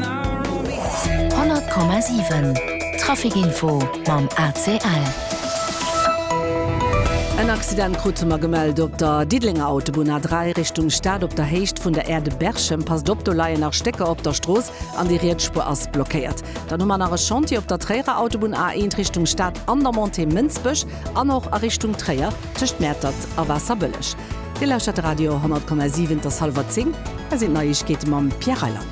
100,7 Trafic info mam ACL. En Accident krute mer gemellt op der Diddelenger Autobunn A3 Richtung Stad op der Héicht vun der Aire de Berchem. Passt op, do leien nach Stécker op der Strooss an déi riets Spuer ass blockéiert. Dann hu mer nach e Chantier op der Tréierer Autobunn A1 Richtung Stad an der Montée Mënsbech an och a Richtung Tréier tëscht Mäertert a Waasserbëlleg. Dir lauschtert de Radio 100,7. Et ass hallwer 10, hei sinn d'Neiegkeete mam Pierre Reyland.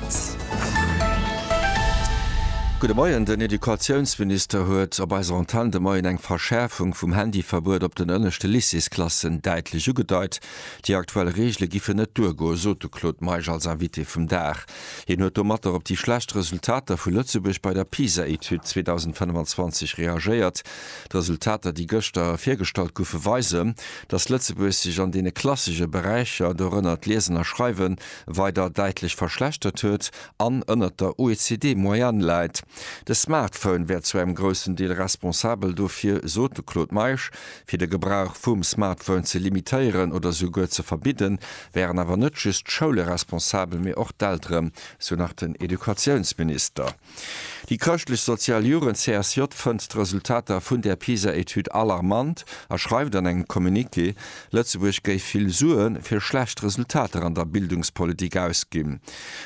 Gudde Moien, Den Educatiounsminister huet op eiser Antenn de Moien eng Verschäerfung vum Handyverbuet op den ënneschte Lycéesklassen däitlech ugedeit. Déi aktuell Reegele giffe net duergoen, sot de Claude Meisch als Invité vum Dag. Hien huet domatter op déi schlecht Resultater vu Lëtzebuerg bei der PISA-Etüd 2025 reagéiert. D'Resultater, déi gëschter virgestallt goufen, weisen, datt Lëtzebuerg sech an deene klassesche Beräicher, dorënner d'Liesen a Schreiwen, weider däitlech verschlechtert huet an ënnert der OECD-Moyenne läit. De Smartphone wär zu engem groussen Deel responsabel dofir, sot de Claude Meisch. Fir de Gebrauch vum Smartphone ze limitéieren oder souguer ze verbidden, wären awer net just d'Schoule responsabel, mee och d'Eltere, sou nach den Educatiounsminister. Déi chrëschtlech-sozial Jugend CSJ fënnt d'Resultater vun där PISA-Etüd alarmant a schreift an engem Communiqué, Lëtzebuerg géif vill Sue fir schlecht Resultater an der Bildungspolitik ausginn.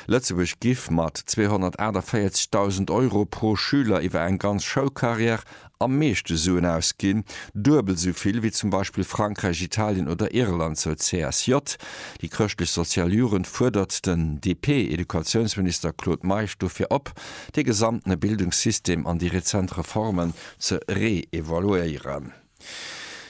Lëtzebuerg giff mat 248.000 Euro pro Schüler iwwer eng ganz Schoulcarrière am meeschte Suen ausginn, duebel esou vill wéi zum Beispill Frankräich, Italien oder Irland, sou d'CSJ. Déi chrëschtlech-sozial Jugend fuerdert den DP-Educatiounsminister Claude Meisch dofir op, de gesamtene Bildungssystem an déi rezent Reformen ze reevaluéieren.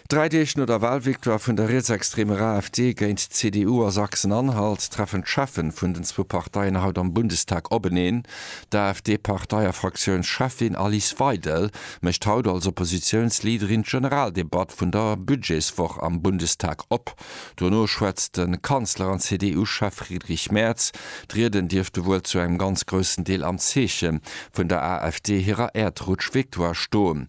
Dräi Deeg no der Wahlvictoire vun der rietsextremer AfD géint d'CDU a Sachsen-Anhalt treffen d'Cheffen vun den zwou Parteien haut am Bundestag openeen. D'AfD-Partei a Fraktiounscheffin Alice Weidel mécht haut als Oppositiounsleaderin d'Generaldebatt vun der Budgetswoch am Bundestag op. Dono schwätzt de Kanzler an CDU-Chef Friedrich Merz. D'Rieden dierfte wuel zu engem ganz groussen Deel am Zeeche vun der AfD hirer Äerdrutsch-Victoire stoen.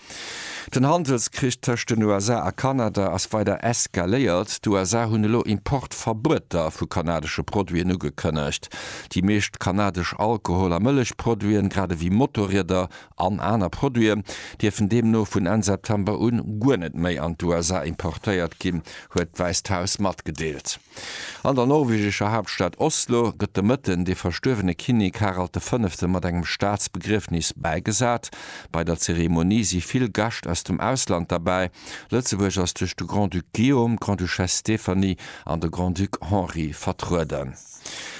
Den Handelskrich tëscht den USA a Kanada ass weider eskaléiert. D'USA hunn elo Importverbueter vu kanadesche Produiten ugekënnegt. Déi meescht kanadesch Alkohol a Mëllechproduiten, grad ewéi Motorrieder an aner Produiten, dierfen deemno vun Enn September un guer net méi an d'USA importéiert ginn, huet d'Wäisst Haus matgedeelt. An der norwegescher Haaptstad Oslo gëtt de Mëtten de verstuerwene Kinnek Harald de Fënnefte mat engem Staatsbegriefnis bäigesat. Bei der Zeremonie si vill Gäscht aus dem Ausland derbäi. Lëtzebuerg ass duerch de Grand-Duc Guillaume, d'Grande-Duchesse Stéphanie an de Grand-Duc Henri vertrueden.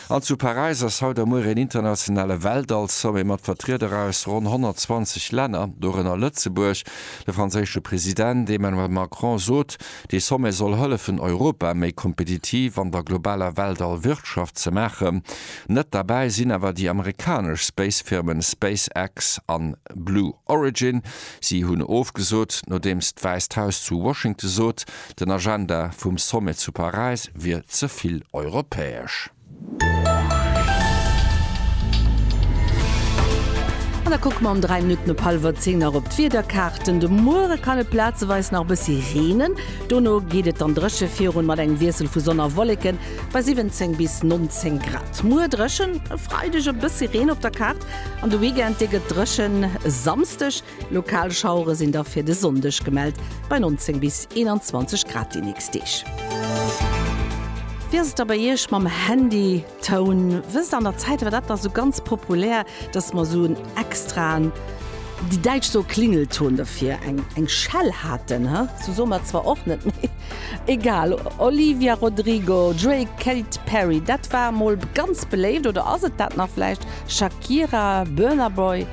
An zu Paräis ass haut a muer een internationale Weltall-Sommet mat Vertrieder aus ronn 120 Länner, dorënner Lëtzebuerg. De franséische President Emmanuel Macron sot, Dee Sommet soll hëllefen Europa méi kompetitiv an der globaler Weltall-Wirtschaft ze maachen. Net derbäi sinn awer déi amerikanesch Space-Firmen SpaceX an Blue Origin. Si hunn ofgesot, nodeems d'Wäisst Haus zu Washington sot, den Agenda vum Sommet zu Paräis wier ze vill europäesch. An da kucke mer am 3 Minutten op hallwer 10 nach op d'Wiederkaarten. De Muere kann et plazeweis nach e bëssi reenen, dono geet et dann dréche virun, mat engem Wiessel vu Sonn a Wolleken bei 17 bis 19 Grad. Muer dréchen, e Freideg e bëssi Reen op der Kaart an de Weekend dee gëtt dréchen. E Samsdeg Lokal Schauere sinn da fir de Sonndeg gemellt, bei 19 bis 21 Grad déi nächst Deeg. Wéi ass et da bei Iech mam Handytoun? Wësst an der Zäit war dat da sou ganz populär, dass mer sou en extraen, déi Däitsch soe Klingelton dofir, eng eng Schell haten, he? Sou soe mer et zwar och net, mee egal. Olivia Rodrigo, Drake, Kate Perry, dat war mol ganz beléift, oder ass et dat nach vläicht? Shakira, Burna Boy.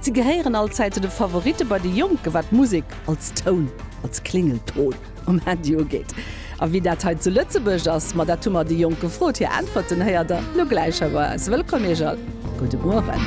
Si gehéieren allzäit zu de Favoritte bei de Jonke wat Musek als Toun, als Klingelton um Handy ugeet. A wéi dat hei zu Lëtzebuerg ass, ma dat hu mer déi Jonk gefrot. Hir Äntwerten héiert der lo gläich hei bei eis. Wëllkomm Iech all, gudde Mueren.